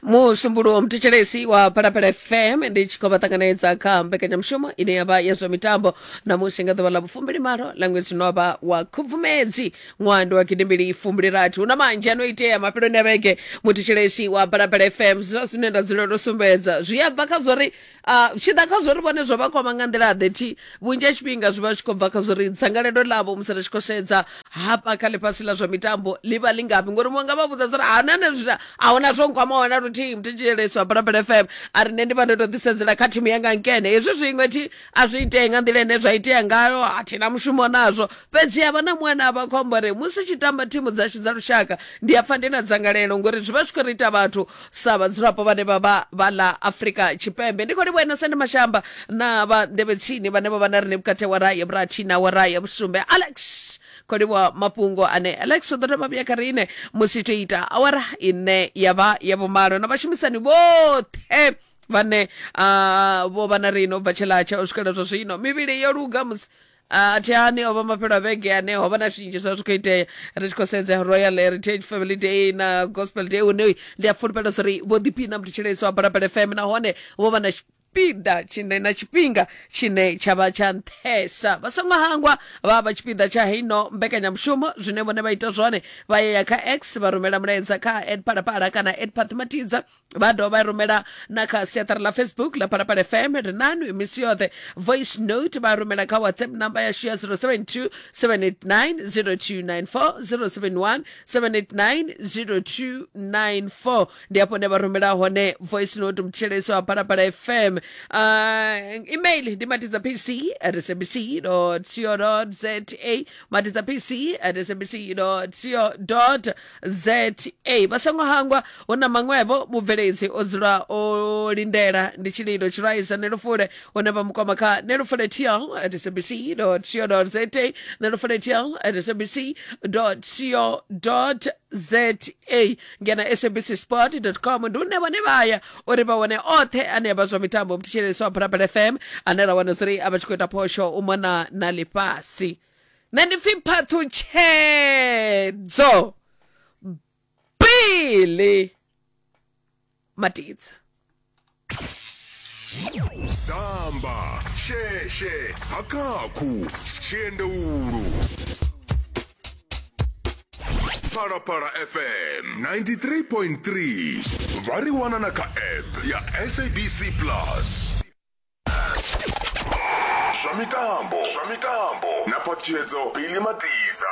musumbulu wa mthetshelesi wa phalaphala fm ndi tshi khou vha ṱanganedza kha mbekanyamushumo ine ya vha ya zwa mitambo namusi nga ḓuvha ḽa vhufumbili malo ḽa ṅwedzi no vha wa khubvumedzi ṅwaha ndi wa gidimbili fumbili rathi hu na manzhi ano itea mafheloni a vhege muthetshelesi wa phalaphala fm zwa zwine nda dzulela u sumbedza zwi a bva kha zwa uri Ah, tshi ḓa kha zwori vhone zwo vha kwama nga nḓila ḓe thi vhunzhi ha tshifhinga zwi vha zwi khou bva kha zwori dzangalelo ḽavho musi ri tshi khou sedza hafha kha ḽifhasi ḽa zwa mitambo ḽi vha ḽi ngafhi ngori muṅwe nga vha vhudza zwori ahuna ne zwi a huna zwo nkwama wana luthihi muthetsheleso wa balabala fm a ri nṋe ndi vha ndo to ḓisedzela kha thimu yanga nkene hezwi zwiṅwe thi a zwi itee nga nḓila ine zwa itea ngayo a thi na mushumo nazwo fhedzi havha na muṅwe na vha khombo ri musi tshi tamba thimu dzashu dza lushaka ndi a pfa ndi na dzangalelo ngori zwi vha zwi khou ri ita vhathu sa vhadzulapo vhane vha vha vha ḽa afrika tshipembe ndi khou livhuwa sende mashamba na vha nḓevhetsini vhane vha vha na rine vhukati wa raye vhurathi na wa raye vhusumbe alex khou livhuwa mafhungo ane alex u ḓo dovha vhuya kha riṋe musi to ita awara ine ya vha ya vhumalo na vhashumisani vhoṱhe vhane uh, vho vha na rine u bva tshilatsha u swikela zwa zwino mivhili yo luga musi a thi ani o vha mafhelo a vhege ane ho vha na zwinzhi zwa zwi khou itea ri tshi khou sedza royal heritage family day na gospel day une ndi a fulufhela uri vho ḓiphina mthetshelesi wa balabala fm nahone vho vha na tshipiḓa tshine na tshifhinga tshine tsha vha tsha nṱhesa vha songo hangwa vha vha tshipiḓa tsha heino mbekanyamushumo zwine vhone vha ita zwone vha ya ya kha x vha rumela mulaedza kha ed phalaphala kana ed phathimatiza vha dovha vha rumela na kha siaṱari ḽa facebook ḽa phalaphala fm ri nanu misi yoṱhe voice note vha rumela kha whatsapp number yashu ya 072 789 0294 071 789 0294 ndi afho ne vha rumela hone voice note mutsheleso wa phalaphala fm uh, email ndi matidza pc at sabc co za matidza pc at sabc co za vha songo hangwa hu na maṅwevho vhubveledzi o dzula o lindela ndi tshililo tshilwaisa nelufule hune vha mukoma kha nelufule tl at sabc co za nelufule tl at sabc co za ngena sabc sport com ndi une vhone vha ya uri vha wane oṱhe ane a vha zwa mitambo mthetshelesi wa phalaphala fm ane ra wana zuri a vha tshi khou ita phosho u mona na ḽifhasi nṋe ndi pfi phaṱhutshedzo bili matidza damba sheshe hakakhu tshiendeulu phalaphala fm 93.3 vha ri wana na kha app ya sabc plus zwa mitambo zwa mitambo na patshedzo pili matiza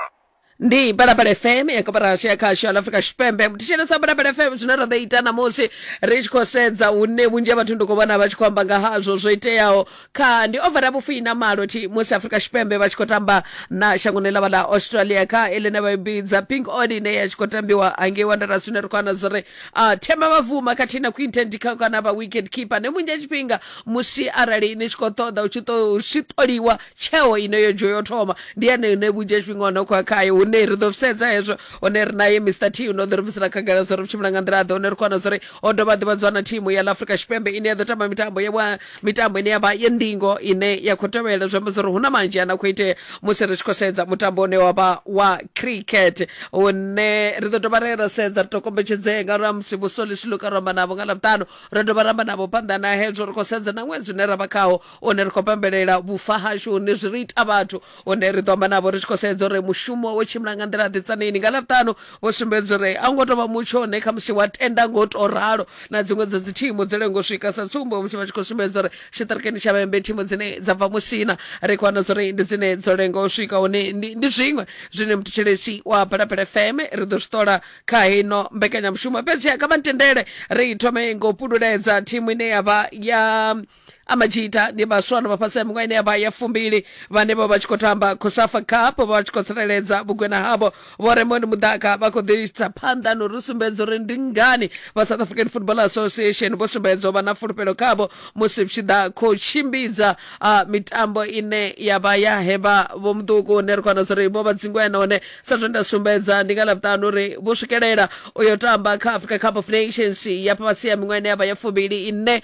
ndi balabala fm ya koporasi ya khasho ya afrika tshipembe muthishelesa balabala fm zwine ra ḓo ita namusi ri tshi khou sedza hune vhunzhi ha vhathu ndi khou vhona vha tshi khou amba nga hazwo zwo iteaho kha ndi overa vhufii na malo thi musi afrika tshipembe vha tshi khou tamba na shangoni ḽavha ḽa australia kha eḽine vha i bidza pink odi ine ya tshi khou tambiwa hangei wanderers zwine ri khou ana zwo ri uh, themba mavuma khathihi na quinten dikha kana vha wicket keeper ne munzhi a tshifhinga musi arali ni tshi khou ṱoḓa u tshi ṱo- tshi ṱoliwa tsheo ine yo dzhio yo thoma ndi yane ine vhunzhi ha tshifhinga hone khoya khayo hune ri ḓo sedza hezwo hone ri naye mr t no ḓo ri bvisela khagala zwo ri vhu tshimbila nga nḓila ḓe hone ri khou wana zwo ri o dovha a ḓivhadzwa na thimu ya ḽa afrika tshipembe ine ya ḓo tamba mitambo ya vha mitambo ine yavha ye ndingo ine ya khou tevhela zwi amba zwa uri hu na manzhi a na khou itea musi ri tshi khou sedza mutambo une wavha wa cricket une ri ḓo dovha ra ya ra sedza ri to kombetshedzea nga uri musi vhusolisi luka ro amba navho nga ḽavhuṱanu ro dovha ra amba navho phanḓa na hezwo ri khou sedza na ṅwedzi une ra vha khawo une ri khou pembelela vhufa hashu hune zwi ri ita vhathu hune ri ḓo amba navho ri tshi khou sedza uri mushumo wo tshimbila nga nḓila ḓi tsanini nga ḽavhutano vho sumbedza uri a ngo tovha mutsho une khamusi wa tenda ngo to ralo na dziṅwe dza dzi thimu dzi lengo swika sa tsumbo musi vha tshi khou sumbedza uri tshiṱirikini tsha vhembe thimu dzine dza bva musina ri khou wana uri ndi dzine dzo lengo swika hune ndi zwiṅwe zwine muthetshelesi wa phalaphala fm ri ḓo zwi ṱola kha hino mbekanyamushumo fhedzi kha vha ntendele ri thome ngo pululedza thimu ine ya vha ya amajita ndi vhaswa no vha fhasi ha miṅwaha ine ya vha ya fumbili vhane vho vha tshi khou tamba cosafa cup vho vha tshi khou tsireledza vhugwena havho vho remond mudaka vha khou ḓisa phanḓa no ri sumbedza uri ndi ngani vha south african football association vho sumbedza u vha na fulufhelo khavho musi vhu tshi ḓa khou tshimbidza ah, mitambo ine ya vha ya hevha vho muṱuku hune ri kwana uri vho vha dzingwena hone sa zwe nda sumbedza ndi nga lavhuṱanu uri vho swikelela u yo tamba kha africa cup of nations ya fhasi ya miṅwaha ine ya vha ya fumbili ine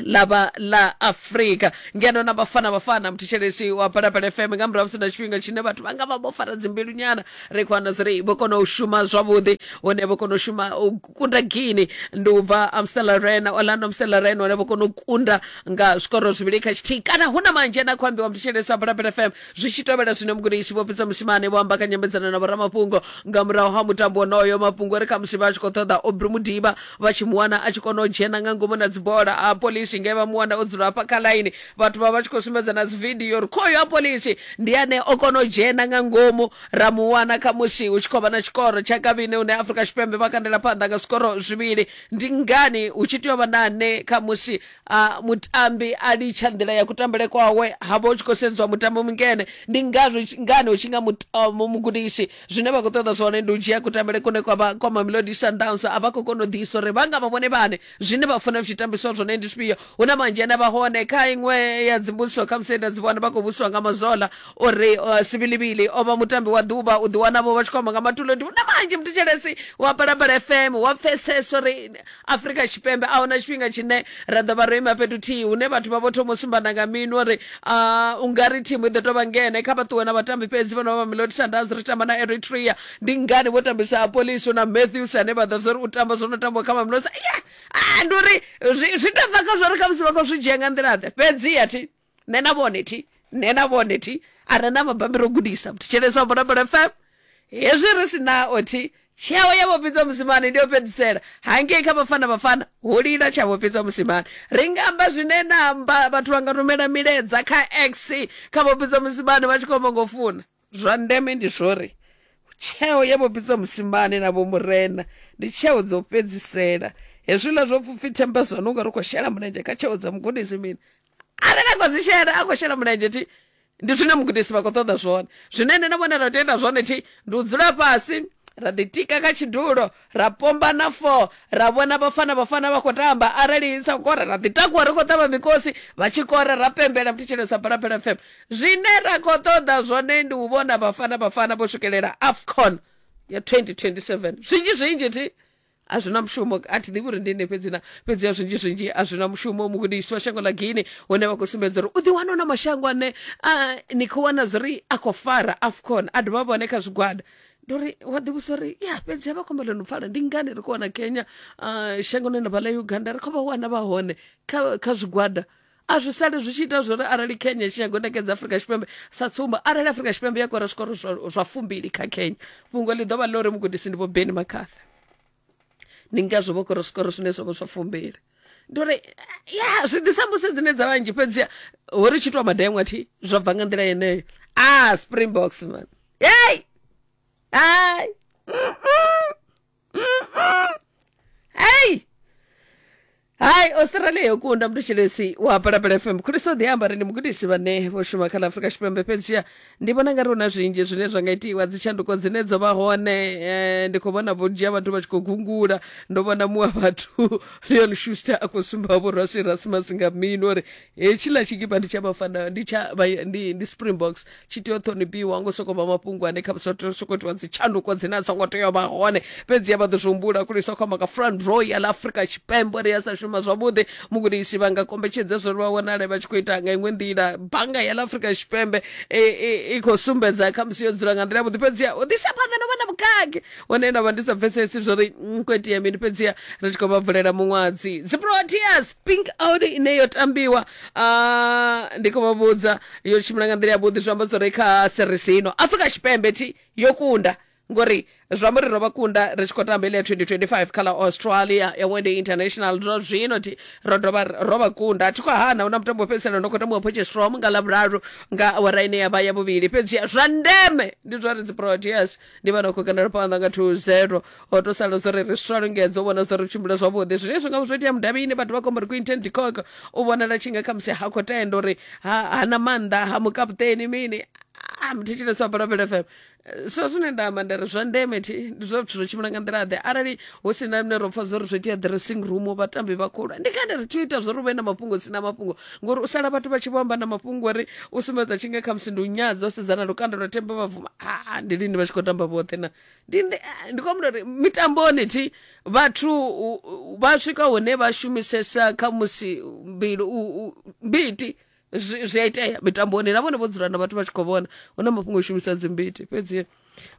ḽa vha ḽa afurika ngeno na vhafana vhafana muthetshelesi wa palapala fm nga murahu musi na tshifhinga tshine vhathu vha nga vha vho fara dzimbilu nyana ri khou wana zwori vho kona u shuma zwavhuḓi hone vho kona u shuma u kunda gini ndi u bva amstela rena orlando amstela rena hone vho kona u kunda nga zwikoro zwivhili kha tshithihi kana hu na manzhi ane a khou ambiwa muthetshelesi wa palapala fm zwi tshi tovhela zwine mugudisi vho pfisa musimane vho amba kha nyambedzano na vhoramafhungo nga murahu ha mutambo wonoyo mafhungo ri khamusi vha tshi khou ṱoḓa obri mudiba vha tshi mu wana a tshi kona u dzhena nga ngomu na dzibola a polisi nge vha mu wana o dzula hafha kha ḽaini vhathu vha vha tshi khou sumbedza na dzividio uri khoyo a polisi ndi ane o kona u dzhena nga ngomu ra mu wana kha musi hu tshi khou vha na tshikoro tsha kavhine hune afrika tshipembe vha kandela phanḓa nga zwikoro zwivhili ndi ngani hu tshi tea u vha na ane kha musi a mutambi a litsha nḓila ya kutambele kwawe ha vha hu tshi khou sedziwa mutambi mungene ndi ngazwo ngani hu tshi nga mugudisi zwine vha khou ṱoḓa zwone ndi u dzhia kutambele kune kwa vha kwa mamelodi sundowns a vha khou kona u ḓisa uri vha nga vha vhone vhane zwine vha funa zwi tambiswa zwone ndi zwifhio hu na manzhi ane vha hone kha iṅwe ya dzimbudziso kha musi nda dzi vhona vha khou vhusiwa nga mazola uri uh, sivilivili o vha mutambi wa ḓuvha u ḓiwanavho vha tshi khou amba nga matulo ndi hu na manzhi mthetshelesi wa balabala fm wa pfesesa uri Afrika Tshipembe a huna tshifhinga tshine ra ḓo vha ro ima fhethu thihi hune vhathu vha vho thoma u sumbana nga minwe uri ah, u nga ri thimu i ḓo tou vha ngene kha vha ṱuwe na vhatambi fhedzi vho no vha Mamelodi Sundowns ri tamba na Eritrea ndi ngani vho tambisa Apoliso na Matthews ane vha ḓivha uri u tamba zwo no tambiwa kha Mamelodi Sa- yeah! ah, ndi uri zwi zwi tou bva kha zwo ri khamusi vha khou zwi dzhia nga nḓila-ḓe fhedzi a thi nṋe na vhone thi nṋe na vhone thi a re na mabambi ro gudisa thetsheleswa bonabona fm hezwi ri si nao thi tsheo ya vhofhidza musimane ndi yo fhedzisela hangei kha vhafana vhafana ho lila tsha vhofhidza musimane ri nga amba zwine na amba vhathu vha nga rumela milaedza kha x kha vhofhidza musimane vha tshi khou amba ngo funa Zwa ndeme ndi zwori tsheo ye vho Pitso Mosimane na vho Murena ndi tsheo dzo fhedzisela. Hezwiḽa zwo pfupfi themba zwa nunga ri khou shela mulenzhe kha tsheo dza mugudisi mini arali a khou dzi shela a khou shela mulenzhe thi ndi zwine mugudisi vha khou ṱoḓa zwone. Zwine nṋe na vhone ra tea u ita zwone thi ndi u dzula fhasi ra ḓitika kha tshidulo ra pomba na four ra vhona vhafana vhafana vha khou tamba arali sa kora ra ḓitakuwa ri khou ṱavha mikosi vha tshi kora ra pembela mthetshelesa phalaphala fm zwine ra khou ṱoḓa zwone ndi u vhona vhafana vhafana vho swikelela afcon ya 2027 zwinzhi zwinzhi thi a zwi na mushumo a thi ḓivhi uri ndi nne fhedzi na fhedzi ya zwinzhi zwinzhi a zwi na mushumo mugudisi wa shango ḽa guine hune vha khou sumbedza uri u ḓiwana na mashango ane ni khou wana zwi ri a khou fara afcon a dovha vhone kha zwigwada ndo ri wa ḓivhusa uri ya fhedzi havha khomba ḽo no pfala ndi ngani ri khou wana kenya uh, shangoni na vhala uganda ri khou vha wana vha hone kha, kha zwigwada a zwi sale zwi tshi ita zwori arali kenya tshi nyago nekedza afurika tshipembe sa tsumbo arali afurika tshipembe ya kora zwikoro zwa fumbili kha kenya fhungo ḽi ḓo vha ḽo ri mugudisi ndi vho beni makhatha ndi ngazwo vho kora zwikoro zwine zwa vho zwa fumbili ndo ri ya zwi ḓisa mbusi dzine dza vhanzhi fhedzi ho ri tshi tou madengwa thi zwa bva nga nḓila yeneyo a ah, springboks man Hey! Ay! Hey! hai australia yo kunda mutshilesi wa palapala fm khulisa u ḓiamba ri ndi mugudisi vhane vho shuma kha ḽa afurika tshipembe fhedzisha ndi vhona nga ri hu na zwinzhi zwine zwa nga itiwa dzitshanduko dzine dzo vha hone eh, ndi khou vhona vhunzhi ha vhathu vha tshi khou gungula ndo vhona muṅwe wa vhathu leon schuster a khou sumba vhorwa sirasmas nga mini uri hetshiḽa tshikipa ndi tsha vhafana ndi tsha ndi, ndi springboks tshi tea u ṱhonifhiwa ngo sokou vha mafhungo ane kha sokou itiwa dzitshanduko dzine a songo tea u vha hone fhedzi ya vha ḓo zwi humbula khuli sa khou amba nga front row ya ḽa afrika tshipembe uri ya sa shuma zwavhuḓi mugudisi vha nga kombetshedza zwo ri vha wanale vha tshi khou ita nga iṅwe nḓila bannga ya ḽa afrika tshipembe i khou sumbedza khamusi yo dzula nga nḓila yavhuḓi fhedzi u ḓisa phanḓa no vha na vhukhakhi hone nda vha ndi sa pfesesi zwo ri nkwetia mini fhedziha ri tshi khou vha vulela muṅwadzi dziproteas pink out ine yo tambiwa ah, ndi khou vha vhudza yo tshimbila nga nḓila yavhuḓi zwi amba zwo ri kha series ino afrika tshipembe thi yo kunda ngori zwi amba uri ro vha kunda ri tshi khou tamba ile ya 2025 kha ḽa australia ya wende international zwa zwino thi ro dovha ro vha kunda a thi khou hana hu na mutambo wo fhedzisela ndo khou tambiwa potchestrom nga ḽavhuraru nga awara ine ya vha ya vhuvhili fhedziha zwa ndeme ndi zwa ri dziproteas ndi vha no khou kandela phanḓa nga 20 o to sala zwo ri ri swa lungedzo u vhona zwo ri tshimbila zwavhuḓi zwine zwi nga zwo itea mudavhini vhathu vha khombo ri quinten dicok u vhonala tshi nga khamusi ha khou tenda uri ha hana maanḓa ha mukaputeni mini a mthetshelesa wa balabela fm so zwine nda amba nda ri zwa ndeme thi ndi zwa zwithu zwo tshimbila nga nḓila ḓe arali hu si na lune ro pfa zwo ri zwo itea dressing room vhatambi vha khulwane ndi ngani ri tshi ita zwo ri vhe na mafhungo si na mafhungo ngori u sala vhathu vha tshi vho amba na mafhungo uri u sumbedza tshinga kha musi ndi u nyadza u sedzana lukanda lwa themba vha vuma aa ndi lini vha tshi khou tamba vhoṱhe na ndi ndi ah, ndi khou amba uri mitamboni thi vhathu u- u- vha swika hune vha shumisesa kha musi mbilu u- u- mbiti zwi zwi a itea mitamboni na vhone vho dzula na vhathu vha tshi khou vhona hu na mafhungo o shumisa dzimbiti fhedzi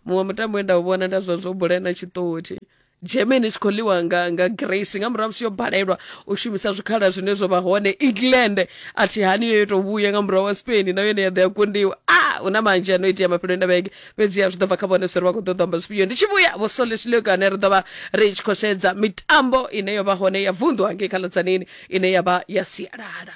muṅwe mutambo we nda u vhona nda zwa zwo bula na tshiṱothi germany tshi khou ḽiwa nga, nga grace nga murahu musi yo balelwa u shumisa zwikhala zwine zwo vha hone england a thi hani yo yo tou vhuya nga murahu wa spain na yone ya ḓo ya kundiwa a hu na manzhi ano itea mafheloni na vhege fhedzi ya zwi ḓo bva kha vhone sori vha khou ḓo ḓo amba zwifhio ndi tshi vhuya vho solesileko ane ri ḓo vha ri tshi khou sedza mitambo ine yo vha hone ya vunḓu hangei kha ḽodzanini ine ya vha ya sialala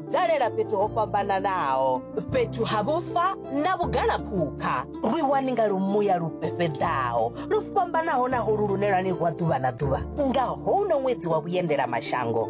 dalela fhethu ho fhambananaho fhethu ha vhufa na vhugalaphukha ri wani nga lumuya lu fhefheḓaho lu fhambanaho na holu lune lwa ni rwa ḓuvha na ḓuvha nga houno ṅwedzi wa vhuendela mashango